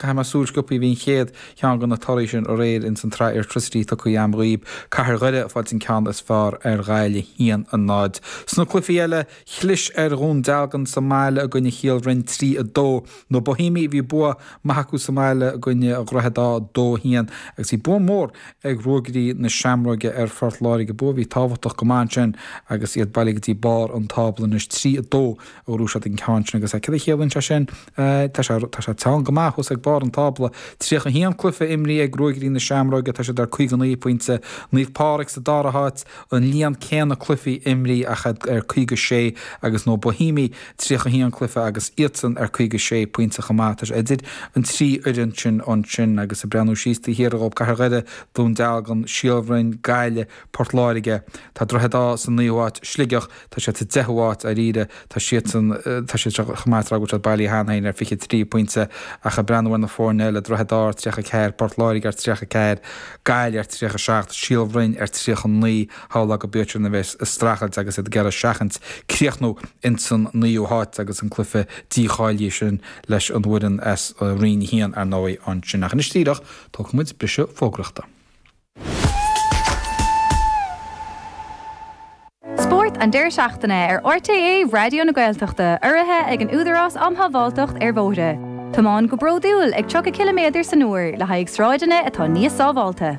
Caithfidh mé súil sciopthaí, bhí an chéad cheann de na torthaí sin aréir ins an tsraith Airtricity tugthaí agam dhaoibh, Cathair Dhoire, ag fáil an ceann is fearr ar Ghaillimh 1, 0. Sna cluifí eile, chlis ar Dhún Dealgan sa mbaile i gcoinne Shíol Bhroin 3, 2. Na Bohímigh, bhí bua maith acu sa mbaile i gcoinne Dhroichead Átha 2, 1, agus bhí bua mór ag Ruagairí na Seamróige ar Phort Láirge, bua a bhí tábhachtach go maith ansin agus iad bailithe go dtí barr an tábla anois. 3, 2 a ghnóthaigh siad an ceann sin agus céard a chiallaíonn sé sin? Tá sé, tá sé teann go maith thuas ag barr an tábla. 31 cluiche imrithe ag Ruagairí na Seamróige, tá siad ar 59 pointe. Naomh Pádraig sa dara háit, an líon céanna cluichí imrithe ach iad ar 56 agus na Bohímigh 31 cluiche agus iadsan ar 56 pointe chomh maith. Tá sé idir an trí fhoireann sin ansin agus ag breathnú síos taobh thiar dhób, Cathair Dhoire, Dún Dealgan, Síol Bhroin, Gaillimh, Port Láirge. Tá Droichead Átha sa naoú háit, Sligeach. Tá siad sa deichiú háit, dáiríre. Tá siadsan, tá siad seo chomh maith is a raibh agus iad bailithe cheana féin ar fiche trí pointe. Ach ag breathnú ar na foirne eile, Droichead Átha ar tríocha a ceathair, Port Láirge ar tríocha a ceathair, Gaillimh ar tríocha a seacht, Síol Bhroin ar tríocha naoi, shamhlófá go bhféadfadh siad a bheith ag streachailt agus iad ag iarraidh seachaint críochnú ins an naoú háit agus an cluiche dícháilithe sin leis an bhfoireann as Roinn a haon, ar ndóigh, ansin. Ach anois díreach, tógfaidh muid briseadh fógraíochta. Spórt an deireadh seachtaine ar RTÉ Raidió na Gaeltachta urraithe ag an Údarás Um Shábháilteacht ar Bhóithre. Tiomáin go bródúil ag 30 ciliméadar san uair le haghaidh sráideanna atá níos sábháilte.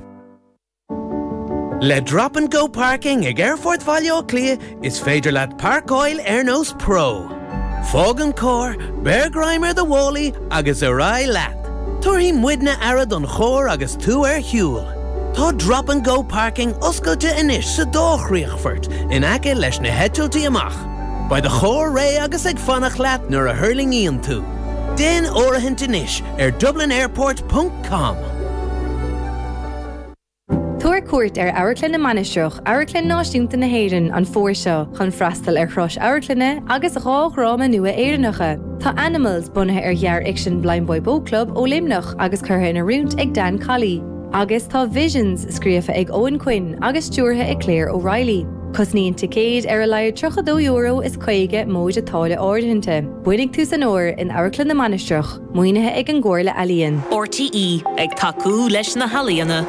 Le Drop and Go Parking ag Aerfort Bhaile Átha Cliath, Is féidir leat páirceáil ar nós pro. Fág an carr, beir greim ar do mhálaí agus ar aghaidh leat. Tabharfaidh muidne aire don charr agus tú ar shiúl. Tá Drop and Go Parking oscailte anois sa dá chríochfort in aice leis na heitiltí amach. Beidh do charr réidh agus ag fanacht leat nuair a thuirlingíonn tú. Déan áirithint anois ar dublinairport.com. Tabhair cuairt ar Amharclann na Mainistreach, Amharclann Náisiúnta na hÉireann, an fómhar seo chun freastal ar thuras amharclainne agus dhá dhráma nua Éireannacha. Tá Animals, bunaithe ar ghearrfhicsean Blindboy Boat Club ó Luimneach agus curtha in oiriúint ag Dan Colley, agus tá Visions, scríofa ag Eoghan Quinn agus stiúrtha ag Claire O'Reilly. Cosnaíonn ticéid ar a laghad €32 is 50 móide táille áirithinte. Bainfidh tú san uair in Amharclann na Mainistreach. Maoinithe ag an gComhairle Ealaíon. RTÉ ag tacú leis na healaíona.